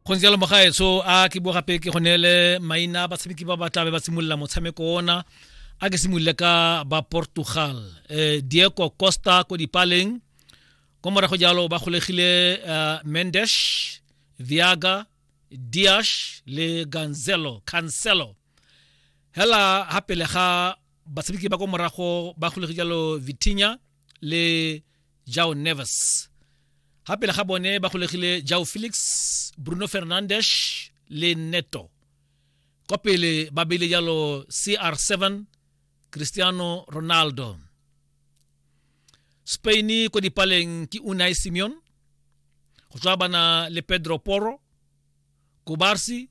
gontse jalo mogaetsho a ke bo gape ke go neele maina a batshameki ba ba tlabe ba simolola motshameko ona a ke simolole ka ba portugal eh, diego costa ko dipaleng ko morago jalo ba golegile uh, eh, mendesh viaga diash le ganzelo cancelo hela ha pele ga batshameki ba ko morago ba golege jalo vitinya le jao neves ha pele ga bone ba golegile jao felix bruno fernandes le neto kwa pele ba beile jalo cr7 cristiano ronaldo spain ko dipaleng ke unai simeon go tswa bana le pedro poro kobarsi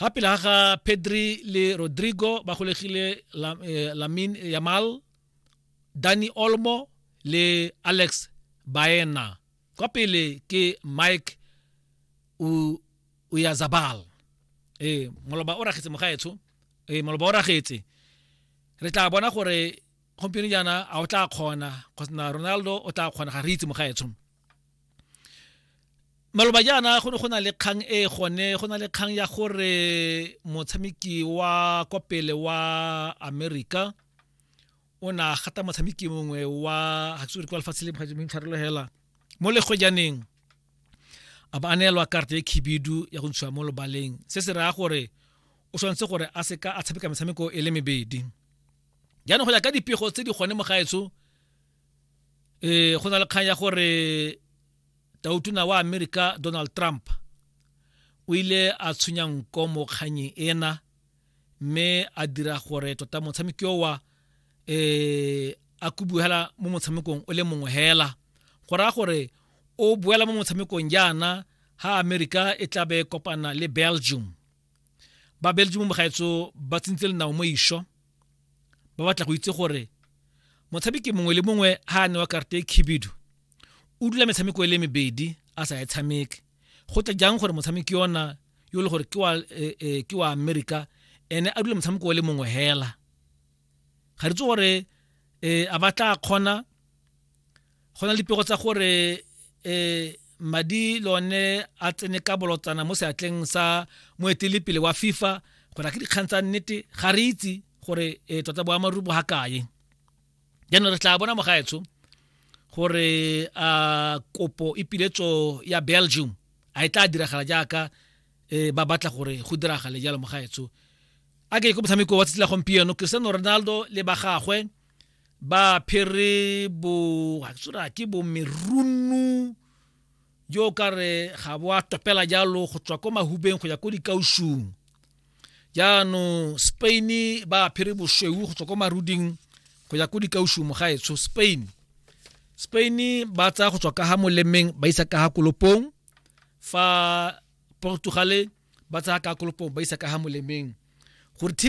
ga pele ga ga pedri le rodrigo ba golegile eh, lamin yamal dani olmo le alex baena kwa pele ke mike uyazabal ee moloba o ragetse mogaetsho ee moloba o ragetse re tla bona gore gompieno jaana a o tla kgona kgosna ronaldo o tla kgona ga re itse mogaetsho maloba jaana go ne go na le kgang e gone go na le kgang ya gore motshameki wa kwa pele wa america o na gata motshameki mongwe wa haksore kwa lefatshe le tshwarelo hela mo legojaneng a ba a neelwa karata e khibidu ya go ntshiwa mo lobaleng se se raya gore o tshwanetse gore a seka a tshameka metshameko e le mebedi jaanong go ya ka dipego tse di gone mo gaetsho eh go na le kgang ya gore tautuna wa america donald trump o ile a tshwenya nko mo kganyeng ena mme a dira gore tota motshameki owa eh a kubuhela mo motshamekong o le mongwe hela go raya gore o boela mo motshamekong jaana ha america e tla be kopana le belgium ba belgium mogaetso ba tsentse lenao mo isho ba batla go itse gore motshameki mongwe le mongwe ha a newa karata e khibidu o dula metshameko e le mebedi a sa e tshameke go tla jang gore motshameki yona yo e le gore ke wa e, e, ke wa america ene a dula motshameko o le mongwe hela ga re tse gore um a batla kgona go na le dipego tsa gore um madi le one a tsene ka bolotsana mo seatleng sa moetelepele wa fifa go na ke dikgang tsa nnete ga re itse gore um tota boamaruri bo ga kae jaanong re tla bona mogaetsho gore a kopo e piletso ya belgium a e tla diragala jaaka um ba batla gore go diragale jalo mogaetsho a ke ko motshameko wa tsatsi la gompieno cristiano ronaldo le ba gagwe ba phere bo tsora ke bo merunu jo ka re ga bo a topela jalo go tswa ko mahubeng go ya ko dikausung jaanong spain ba phere bosweu go tswa ko maruding go ya ko dikausung mo gaetsho spain spain ba tsaya go tswa ka ga molemeng ba isa ka ga kolopong fa portugale ba tsaya ka kolopong ba isa ka ga molemeng gore tv